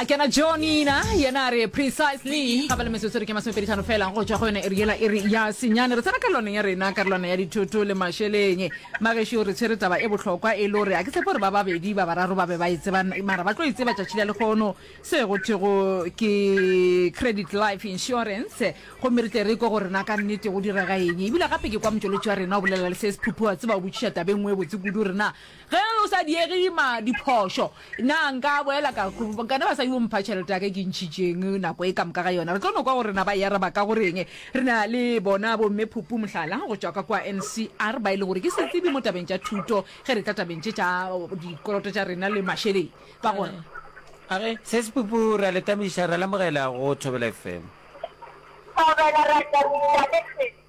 a kena jonina yena a re precisely ga ba le metsotso re ke masomepedi tlhano fela go tswa go yone e riela e re ya senyane re tsena karolwaneng ya rena karolwana ya dithoto le mašeleng magešo re tshwere taba e bohlokwa e le gore a ke tshepo gore ba babedi ba bararo ba be ba e tseba mara ba tlo e tseba tšatši la lekgono se go thego ke credit life insurance gomme re tle re ko gore na ka nnete go direga eng ebile gape ke kwa motšweletši wa rena o bolela le se sephuphu wa tseba o botšiša tabe nngwe e botse kudu rena Ge o sa diege ima diphošo. Na nka boela ka kana basadi bo mpha tšhelete ya ka e ke ntšhitšeng nako e ka moka ga yona? Re tlo no kwa gore na ba e araba ka go reng. Re na le bona Bomme Phupu, mohlala, go tšwa ka kua NCR, ba e le gore ke setsebi mo tabeng tša thuto ge re tla tabeng tše tša dikoloto tša rena le mašeleng. Ba gore. A re, Ses Phupu, re a le tamiša, re a le amogela go Thobela FM. Thobela, re a tamiša le sesi.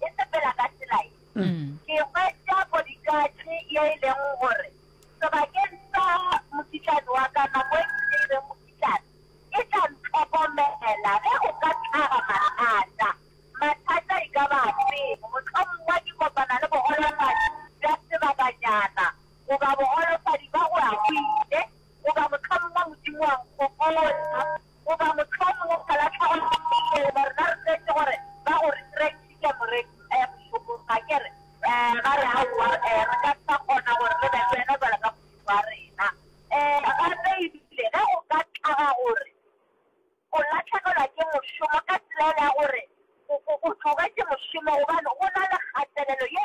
e sepela ka tsela ye ke hwetša bodikatšhe ye e leng gore sebakeng sa mokitlane wa ka nako e ke ile mokitlane e tla ntlhokomela ge o ka tlhaga mathata mathata e ka ba fe mohlomong wa ke kopana le bogolofadi bja sebakanyana goba bogolofadi ba go a go ile goba mohlomong wa modimo wa nkgokola Goba mohlomongwe o ka latlhego le motho goba rena re tletse gore ba go resurrectitše moreki eh mošomong ga ke re eh ba re aowa eh re ka se sa kgona gore re be le wena jwalo ka Modimo wa rena eh gape ebile ge go ka tlaga gore o latlhegelwa ke mošomo ka tsela e le ya gore o tlogetše mošomo gobane go na le kgatelelo ye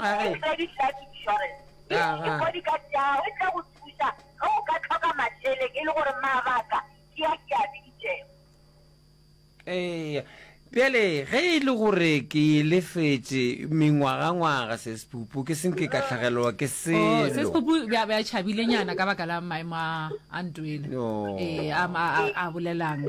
a re credit life insurance ke Aha. bodyguard ya gago e tla go thusa ge o ka tlhoka mašeleng e le gore mabaka ke a ke a biditšego ee bjale ge e le gore ke e lefetše mengwagangwaga sespupu ke senke ka tlhagelelwa ke se Oh, se selo sepopu bja bja tšhabilenyana ka baka la maemo a a ntwele No. ee a ma- a- a bolelang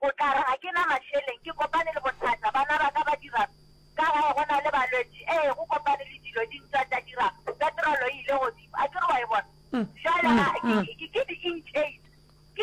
O tla re, Ga ke na mašeleng, ke kopane le bothata, bana ba ka ba dira'ng? Ka gae go na le balwetši, ee, go kopane le dilo di ntwa, tša dira'ng? Petrolo e ile godimo. A ke re wa e bona? Bjale ga ke, ke, ke di-inches, ke.